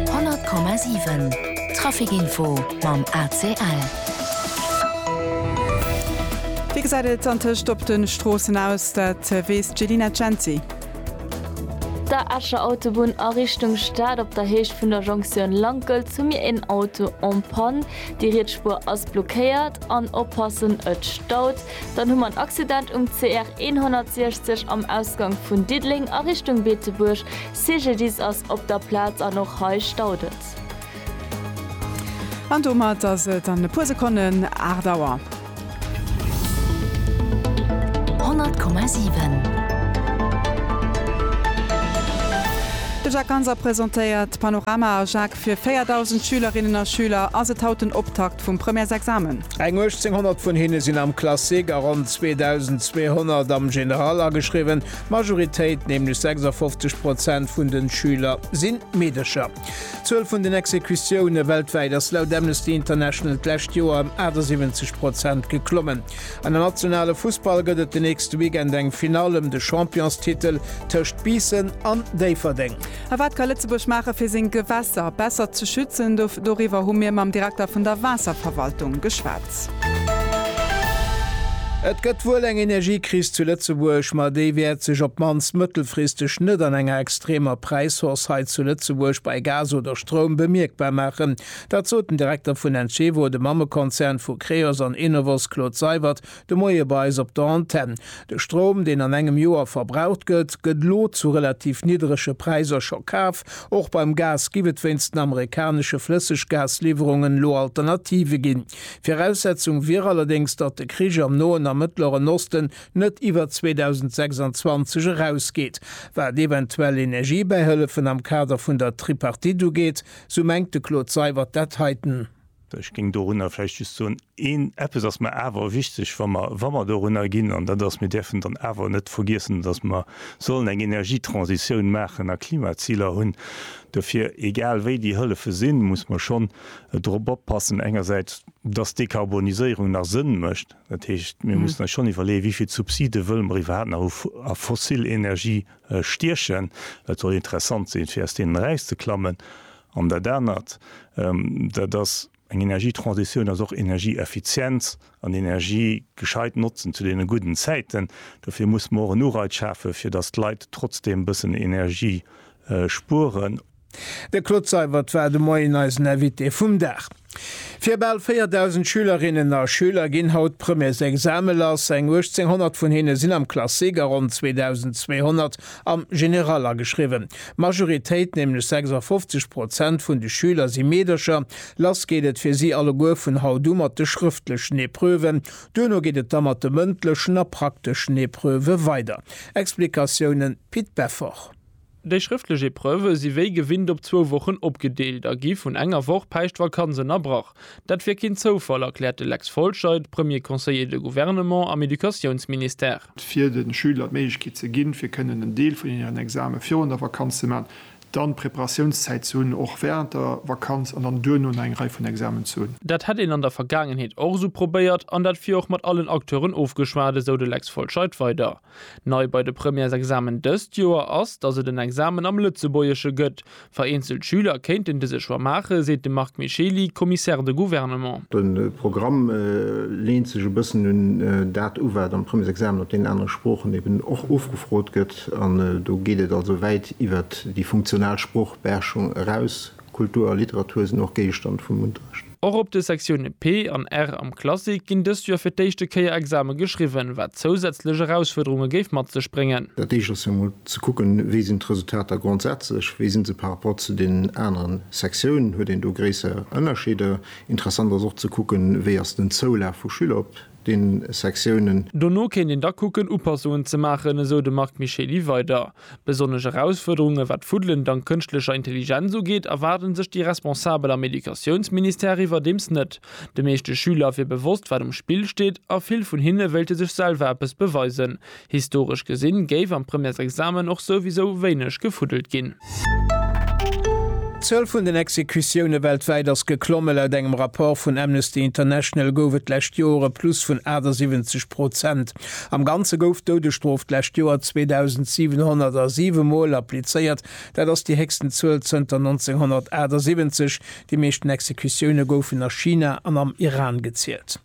100,7 Trafic Info mam ACL. Wéi gesäit et antëscht op de Stroossen aus? Dat weess d'Jelina Cenci. Der Escher Autobunn a Richtung Stad op der Héicht vun der Jonktioun Lankelt hu mir een Auto en Panne. Déi riets Spuer ass blockéiert an oppassen et staut. Dann hu mer en Accident um CR 160 am Ausgank vun Diddeleng a Richtung Beetebuerg. Cididis ass op der Plaz an och hei staut et. An domat ass et an e puer Sekonnen 8 Auer. 100,7. De Jacques Ganser presentéiert d'Panorama A Jacques, fir 4.000 Schülerinnen a Schüler ass et haut den Optakt vum Premièresexamen. Eng 1.800 vun hinne sinn am Classique a ronn 2.200 am General ageschriwwen. D'Majoritéit, nämlech 56 Prozent vun de Schüler, si Meedercher. D'Zuel vun den Exekutioune weltwäit ass laut Amnesty International d'lescht Joer ëm 78 Prozent geklommen. An am nationale Fussball gëtt et den nächste Weekend eng Finall ëm de Championstitel tëscht Biissen an Déifferdeng. A wat ka Lëtzebuerg maache fir seng Gewässer besser ze schützen? Doriwwer hu mir mam Direkter vun der Waasserverwaltung geschwat. Et gëtt wuel eng Energiekris zu Lëtzebuerg, ma déi wäert sech op d'mannst mëttelfristeg net an enger extremer Präishausse hei zu Lëtzebuerg bei Gas oder Stroum bemierkbar maachen. Dat sot den Direkter vun Encevo, dem Mammekonzern vu Creos an Enovos, Claude Seywert, De Moie bei eis op der Antenn. De Stroum, deen an engem Joer verbraucht gëtt, gëtt elo zu relativ nidderege Präiser scho kaf. Och beim Gas giff et wéinst den amerikanesche Flësseggasliwwerungen elo Alternative ginn. Viraussetzung wier allerdéngs, datt de Krich am Noen a Mëttleren Osten net iwwer 2026 erausgeet. Wat eventuell Energiebäihëllefen am Kader vun der Tripartite ugeet, sou mengt de Claude Seywert dat heiten. Ech géing dorunner vläicht just soen, een eppes ass mer awer wichteg, wa mer, wa mer dorunner ginn, an dat ass, mir däerfen dann awer net vergiessen, dass mer sollen eng Energietransitioun maachen a Klimaziler hunn. Dofir, egal wéi déi Hëllefe sinn, muss mer schonn drop oppassen, engersäits, dass d'Dekarboniséierung nach Sënn mécht. Dat heescht, mir mussen eis schonn iwwerleeën, wéi vill Subside wëlle mer iwwerhaapt nach a fossil Energie stiechen. Dat soll interessant sinn, fir aus deenen erauszeklammen. An dat anert, dat ass eng Energietransitioun, ass och Energieeffizienz an Energie gescheit notzen zu deene gudden Zäiten. Dofir muss mer och en Ureiz schafen, fir datt d'Leit trotzdeem e bëssen Energie spueren. De Claude Seibert war de Moien eisen Invité vum Dag. Fir bal 4.000 Schülerinnen a Schüler ginn haut d'Premièresexame lass. Eng 1.800 vun hinne sinn am Classique a ronn 2.200 am General ageschriwwen. D'Majoritéit, nämlech 56 Prozent vun de Schüler si Meedercher. Lass geet et fir si alleguer vun haut u mat de schrëftlechen Epreuven. Duerno geet et da mat de mëndlechen a prakteschen Epreuve weider. Explikatiounen, Pit Beffort. Déi schrëftlech Epreuve si wéi gewinnt op zwou Wochen opgedeelt a gi vun enger Woch Päischtvakanz ënnerbrach. Dat wier keen Zoufall, erkläert de Lex Folscheid, Premier conseiller de gouvernement am Educatiounsministère. fir de Schüler d'Méiglechkeet ze ginn, fir kënnen en Deel vun hiren Exame virun der Vakanz ze maachen, dann Preparatiounszäit ze hunn, och wärend der Vakanz, an dann duerno nach eng Rei vun Examen ze hunn. Dat hätt een an der Vergaangenheet och esou probéiert an dat wier och mat allen Acteuren ofgeschwat, esou de Lex Folscheid weider. Nei bei de Premièresexamen dëst Joer ass, datt et en Examen am Lëtzebuergesche gëtt. Vereenzelt Schüler kéinten dëse Choix maachen, seet de Marc Micheli, Commissaire de gouvernement. De Programm leent sech e bëssen un dat u wat am Premièresexamen op deenen anere Sproochen eben och ofgefrot gëtt. An do geet et also wäit iwwert déi funktional Sproochbeherrschung eraus. Kultur a Literatur sinn och Géigestand vum Unterrecht. Och op de Sektioune P an R am Classique ginn dëst Joer fir d'éischte Kéier Exame geschriwwen, wat zousätzlech Erausfuerderunge géif mat sech bréngen. Dat éischt ass jo emol ze kucken, wéi sinn d'Resultater grondsätzlech, wéi si se par rapport zu deenen aneren Sektiounen, huet een do gréisser Ënnerscheeder? Interessant ass och ze kucken, wéi ass den Zoulaf vu Schüler op den Sektiounen. Dono kéint een da kucken, Upassungen ze maachen, esou de Marc Micheli weider. Besonnesch Erausfuerderunge wat d'Fuddelen dank kënschtlecher Intelligenz ugeet, erwaarde sech déi Responsabel am Educatiounsministère iwwerdeems net. De meeschte Schüler wier bewosst, wat um Spill steet a vill vun hinne wéilte sech selwer eppes beweisen. Historesch gesinn géif am Premièresexamen och souwisou wéineg gefuddelt ginn. D'Zuel vun den Exekutioune weltwäit ass geklomme. Laut engem Rapport vun Amnesty International gouf et d'lescht Joer e Plus vun 78 Prozent. Am Ganze gouf d'Doudesstrof d'lescht Joer 2.707 Mol applizéiert. Dat ass déi héchsten Zuel zënter 1978. Déi meeschten Exekutioune goufen a China an am Iran gezielt.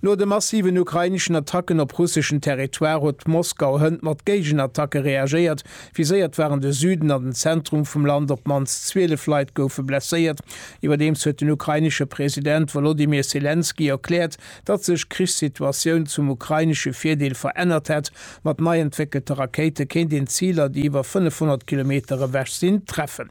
No de massiven ukraineschen Attacken op russeschen Territoire huet Moskau hënt mat Géigenattacke reagéiert. Viséiert waren de Süden an den Zentrum vum Land, op d'mannst 12 Leit goufe blesséiert. Iwwerdeems huet den ukrainesche President Wolodymyr Selenskyj erkläert, datt sech d'Krichssituatioun zum ukrainesche Virdeel verännert hätt. Mat nei entwéckelte Rakéite kéint een Ziler, déi iwwer 500 Kilometer ewech sinn, treffen.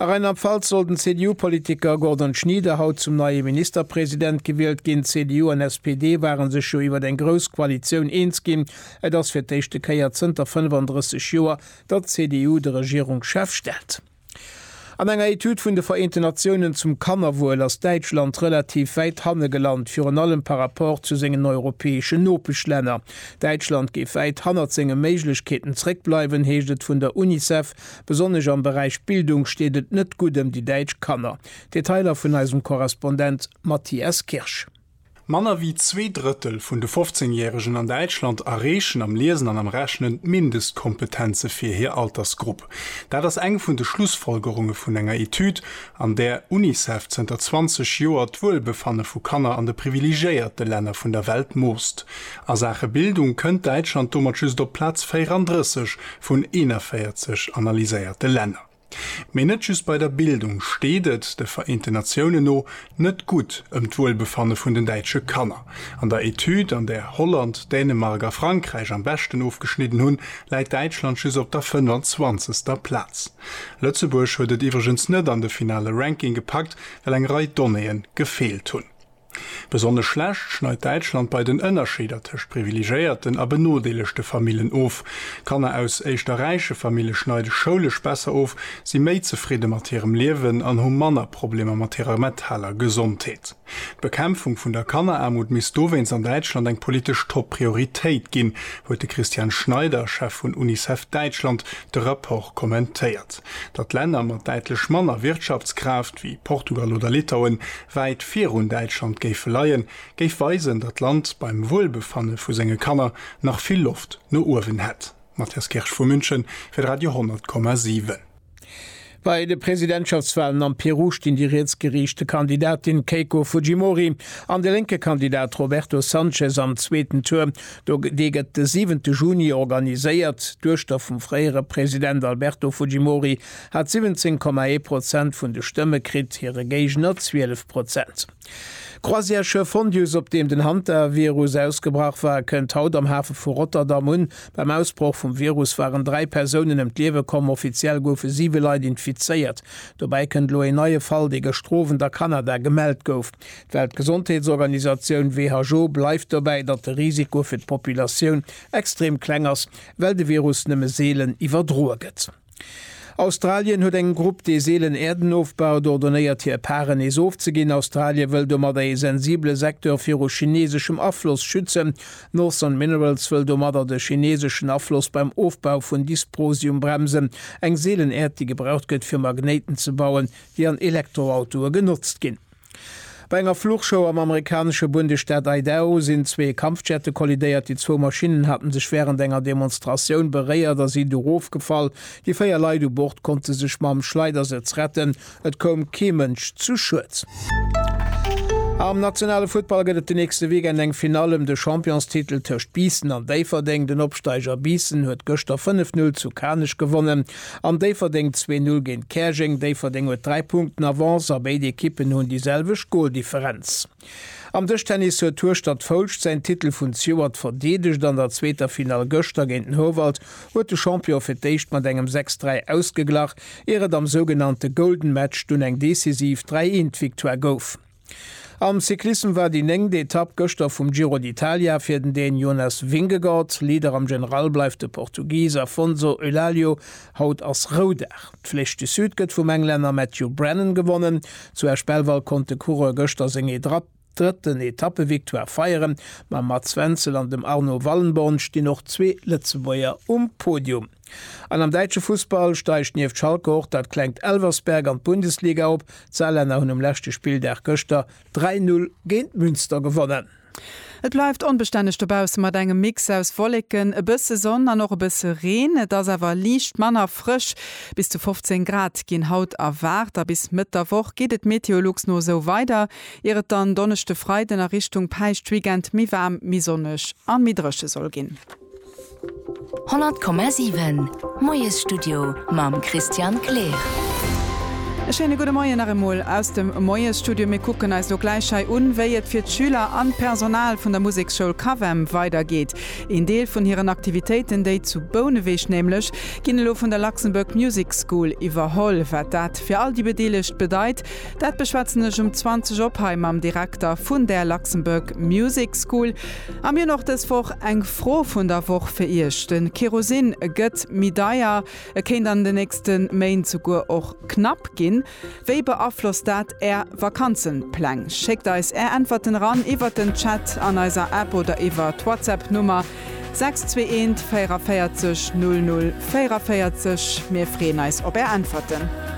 A Rheinland-Pfalz soll den CDU-Politiker Gordon Schnieder haut zum neie Ministerpresident gewielt ginn. CDU an SPD ware sech jo iwwer eng grouss Koalitioun eens ginn. Et ass fir d'éischte Kéier zënter 35 Joer, datt d'CDU de Regierungschef stellt. An enger Etüd vun de Vereenten Natiounen zum Kannerwuel ass Däitschland relativ wäit hanne gelant, virun allem par Rapport zu sengen europäeschen Nopeschlänner. Däitschland géif wäit hannert senge Méiglechkeeten zréckbleiwen, heescht et vun der Unicef Besonnesch am Beräich Bildung steet et net gutt ëm déi däitsch Kanner. Detailer vun eisem Korrespondent Matthias Kirsch. Manner wéi zwee Drëttel vun de 15 Järegen an Däitschland erreechen am Liesen an am Rechnen d'Mindestkompetenze fir hir Altersgrupp. Dat ass eng vun de Schlussfolgerunge vun enger Etüd, an där Unicef zënter 20 Joer d'Wuelbefanne vu Kanner an de privilegéierte Länner vun der Welt moosst. A Saache Bildung kënnt Däitschland domat just op Plaz 34 vun 41 analyséierte Länner. Mee net just bei der Bildung steet et, de Vereenten Natiounen no, net gutt ëm d'Wuelbefanne vun den däitsche Kanner. An der Etüd, an där Holland, Dänemark a Frankräich am beschten ofgeschnidden hunn, läit Däitschland just op der 25. Plaz. Lëtzebuerg huet et iwwregens net an de finale Ranking gepackt, well eng Rei Donnéeë gefeelt hunn. Besonnesch schlecht schneit Däitschland bei den Ënnerscheeder tëscht privilegéierten a benodeelegte Famillen of. Kanner aus éischter räiche Famille schneide schoulesch besser of, si méi zefridde mat hirem Liewen an hu manner Problemer mat hirer metaler Gesondheet. D'Bekämpfung vun der Kanneraarmut misst dowéinst an Däitschland eng politesch Top-Prioritéit ginn, huet de Christian Schneider, Chef vun Unicef Däitschland, de Rapport kommentéiert. Datt Länner mat däitlech manner Wirtschaftskraaft, wéi Portugal oder Litauen, wäit virun Däitschland géife leien, géif weisen, datt d'Land beim Wuelbefanne vu senge Kanner nach vill Loft no uewen hätt. Matthias Kirsch vu München fir de Radio 10,7. Bei de Presidentschaftswalen am Peru stinn déi rietsgeriichte Kandidatin Keiko Fujimori an de lénke Kandidat Roberto Sanchez am zweeten Tour. Dee gëtt de siwente Juni organiséiert. D'Duechter vum fréiere President Alberto Fujimori hat 17, 1 Prozent vun de Stëmme kritt, hire Géigner 12 Prozent. D'Croisièreschiff Fondius, op deem den Hantavirus ausgebrach war, kënnt haut am Hafe vu Rotterdam un. Beim Ausbroch vum Virus waren dräi Persounen ëm d'Liewe komm. Offiziell goufe siwe Leit infizéiert. Dobäi kënnt elo een neie Fall, dee gëschter Owend a Kanada gemellt gouf. D'Weltgesondheetsorganisatioun, who, bleift dobäi, datt de Risiko fir d'Populatioun extrem kleng ass, well de Virus nëmme seelen iwwerdroe gëtt. Australien huet eng Grupp, déi seelen Äerden ofbaut, ordonéiert hir Paren nees ofzeginn. Australie wëll domadder ee sensibele Secteur viru chineeseschem Afloss schützen. Northern Minerals wëll domadder de chineeseschen Afloss beim Ofbau vun Dysprosium bremsen, eng seelen Äerd, déi gebraucht gëtt fir Magnéiten ze bauen, déi an Elektroautoe genotzt ginn. Bei enger Fluchshow am amerikanesche Bundesstaat Idaho sinn zwee Kampfjette kollidéiert. Déi zwou Maschinnen hate sech wärend enger Demonstratioun beréiert a sinn du rofgefall. Déi véier Leit u Bord konnte sech mam Schleidersëtz retten. Et koum kee Mënsch zu Schued. Am nationale Futtball gëtt et de nächste Weekend eng Finall ëm de Championstitel tëscht Biissen an Déifferdeng. Den Opsteiger Biissen huet gëschter 5, 0 zu Kanech gewonnen. An Déifferdeng zwee Null géint Käerjeng. Déifferdeng huet 3 Punkten Avance a béid Ekippen hunn déi selwecht Goldifferenz. Am Dëschtennis huet d'Hueschtert Foulscht säin Titel vun Stewart verdeedegt. An der zweeter Finall gëschter géint den Howald huet de Champion fir d'éischt mat engem 6, 3 ausgeglach, ier et am sougenannte Golden Match dunn eng decisiv 3, 1 Victoire gouf. Am Cyclissem war déi néngt Etapp gëschter vum Giro d'Italia fir den Dän Jonas Vingegaard. Leader am General bleift de Portugis Afonso Eulálio. Haut ass Roudag. D'Flèche du Sud gëtt vum Englänner Matthew Brennan gewonnen. Zu Esch-Belval konnt de Coureur gëschter seng drëtten Etappevictoire feieren. Mam Mats Wenzel an dem Arno Wallenborn stinn och zwee Lëtzebuerger um Podium. An am däitsche Fussball steigt nieft Schalke och dat klengt Elversberg an d'Bundesliga op. D'Saarlänner hunn um leschte Spilldag gëschter 3, 0 géint Münster gewonnen. Et bleift onbestänneg dobausse mat engem Mix aus Wolleken, e bësse Sonn an och e bësse Reen. Et ass awer liicht manner frësch. Bis zu 15 Grad ginn haut erwaart a bis Mëtt der Woch geet et Meteolux no esou weider, ier et dann Donneschde, Freiden a Richtung Päischtweekend méi waarm, méi sonneg a méi dréche soll ginn. 100,7 Moiesstudio mam Christian Kleer. E schéine gudde Moien nach emol aus dem Moiesstudio. Mir kucken eis elo gläich hei un, wéi et fir d'Schüler an d'Personal vun der Museksschoul Cavem weidergeet. Een Deel vun hiren Aktivitéiten, déi zu Bouneweg nämlech, ginn elo vun der Luxembourg Music School iwwerholl. Wat dat fir all déi Bedeelegt bedeit, dat beschwätzen ech um 20 op hei mam Direkter vun där Luxembourg Music School. An mir hunn och dës Woch eng Fro vun der Woch fir Iech. De Kerosin gëtt méi deier, e kéint an de nächste Méint souguer och knapp ginn. Wéi beaflosst dat Är Vakanzenpläng? Schéckt eis Är Äntwerten eran iwwert den Chat an eiser App oder iwwer d'Whatsapp Nummer 621 44 00 44. Mir freeën eis op Är Äntwerten.